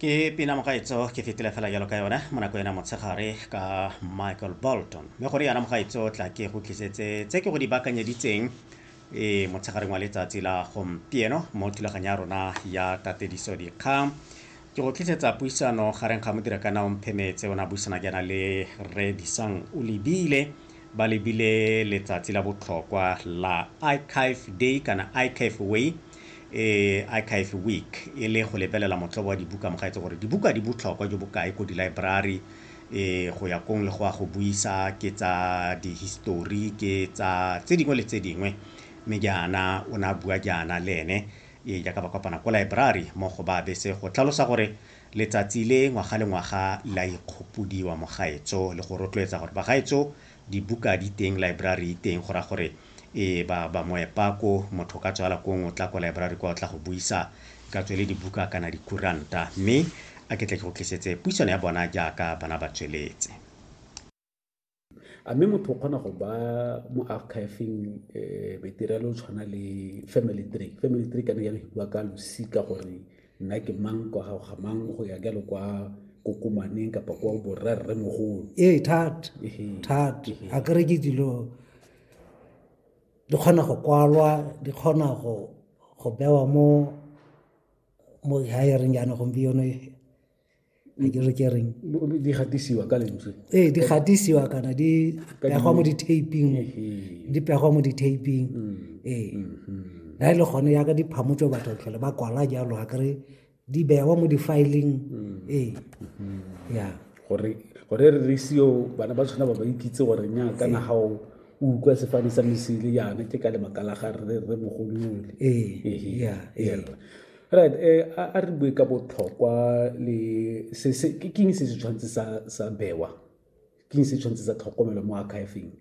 ke pina mogaetso ke fetile fela jalo ka yone mo nako ena motshegare ka michael bolton mme gore yana mogaetso tla ke go tlisetse tse ke go di bakanyeditseng e motshegareng wa letsatsi la gompieno mo thulaganyo ya rona ya tatediso dikgang ke go tlisetsa puisano gareng ga modira kana omphemetse o ne a buisana jaana le re disang o lebile ba lebile letsatsi la botlhokwa la icafe day kana icafe way e Archive Week e le go lebelela motlobo wa dibuka mo gaetse gore dibuka di botlhokwa jo bokae ko dilaeborari e go ya kong le go a go buisa ke tsa dihistori ke tsa tse dingwe le tse dingwe mme jaana o ne a bua jaana le ene e jaaka ba kopana ko laeborari mo go ba bese go tlhalosa gore letsatsi le ngwaga le ngwaga la ikgopodiwa mo gaetso le go rotloetsa gore bagaetso dibuka di teng library e teng go ra gore ee ba ba moepa ko motho ka tswala ko ngwe o tla ko library kwa o tla go buisa ka tswele dibuka kana dikuranta mme a ke tle ke go tlisetse puisano ya bona jaaka bana ba tsweletse a mme motho o kgona go ba mo archiving um eh, material o tshwana le family tree family tree ka ne ya re bua ka losika gore nna ke mang kwa gago ga mang go ya jalo kwa kokomaneng kapa kwa borra rre mogolo ee thata thata a kere ke dilo di kgona go kwalwa di kgona go go bewa mo mo hiring yana gompieno a ke re ke reng di gatisiwa ka lentswe ee di gatisiwa kana di pegwa mo di-taping di pegwa mo di-taping mm. ee na mm-hmm. e le gone yaka di phamotso batho tlhole ba kwala jalo a kere di bewa mo di-filing mm. ee mm-hmm. ya gore gore re re seo bana ba tshwana ba ba ikitse gore nya ka na gago o utlwa sefane sa mesele yana ke ka lebaka la ga re re mogolole ee ya Right eh, a re bue ka botlhokwa le se se ke king se se tshwantse sa sa bewa king se tshwantse sa tlhokomelo mo archiving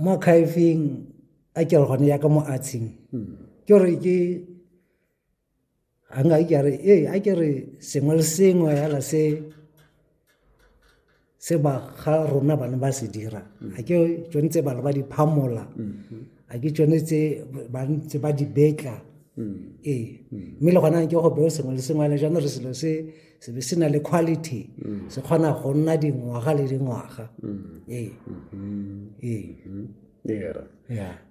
mo archiving a ke re gone ya ka mo artsing hmm. ke re ke a nga ke re eh a ke re sengwe le sengwe ya la se se ba ga rona bana ba se dira mm. a ke tsone tse bana ba di phamola mm-hmm. a ke tsone tse ba ntse ba di betla mm. ee mm. mme le gona ke go beo sengwe le sengwe le jaanong re selo se se be se na le quality se kgona go nna dingwaga le dingwaga ee mm-hmm. ee mm-hmm. era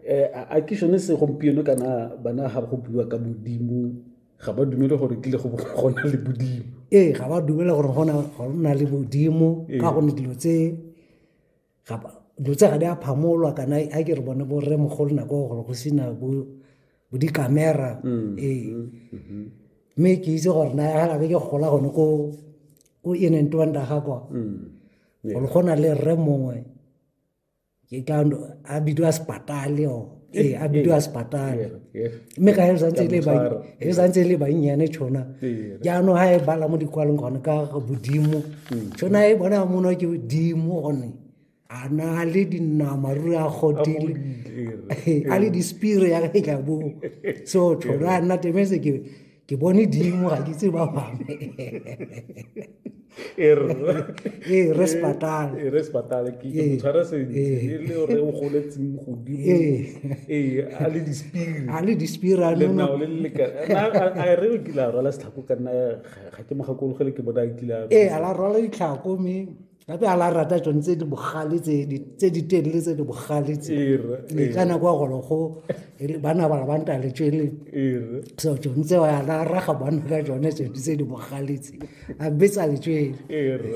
eh, a ke sone segompieno kana bana ga go bua ka modimo ga ba dumele gore kile go gona le bodimo ee ga ba dumele gore go na le bodimo ee. ka gonne dilo tse dilo tse ga di a phamolwa kana a ke re bone bo rre mogolo nako ya gore go sena bo dikamera mm, ee mm, mm-hmm. mme ke itse gore na ga ke gola gone ko ko inentwanda ga kwa mm, gore go na le rre mongwe ke ka a bidiwa sepatale o ee a bidiwa sepatale mme ka e santse e le bannyane tšhona jaanong ga e bala mo dikwalong gone ka bodimo tšhona e bona mono ke bodimo gone a na le dinama ruri a godile a le dispire ya ka e tla bo so tšhona a nna temetse ke ke bone dimo ga ke tse ba bangwe e re ee, re sepatale e re sepatale ke ee, motshwara sentle ee. e le gore o goletseng godimo ee a le dispiri a le dispiri a le nao le le ka a re o kile a rwala setlhako ka nna ga ke mo gakologele ke bona a kile a ee a la rwala ditlhako mme gape a la rata tsone tse di bogale tse di- tse di telele tse di bogale tse Ere, le ka nako ya golo go re bana ba ba nta le tswele ere so tsone tseo a la raga bana ka tsone tse di- tse di bogale tse a betsa le tswele ere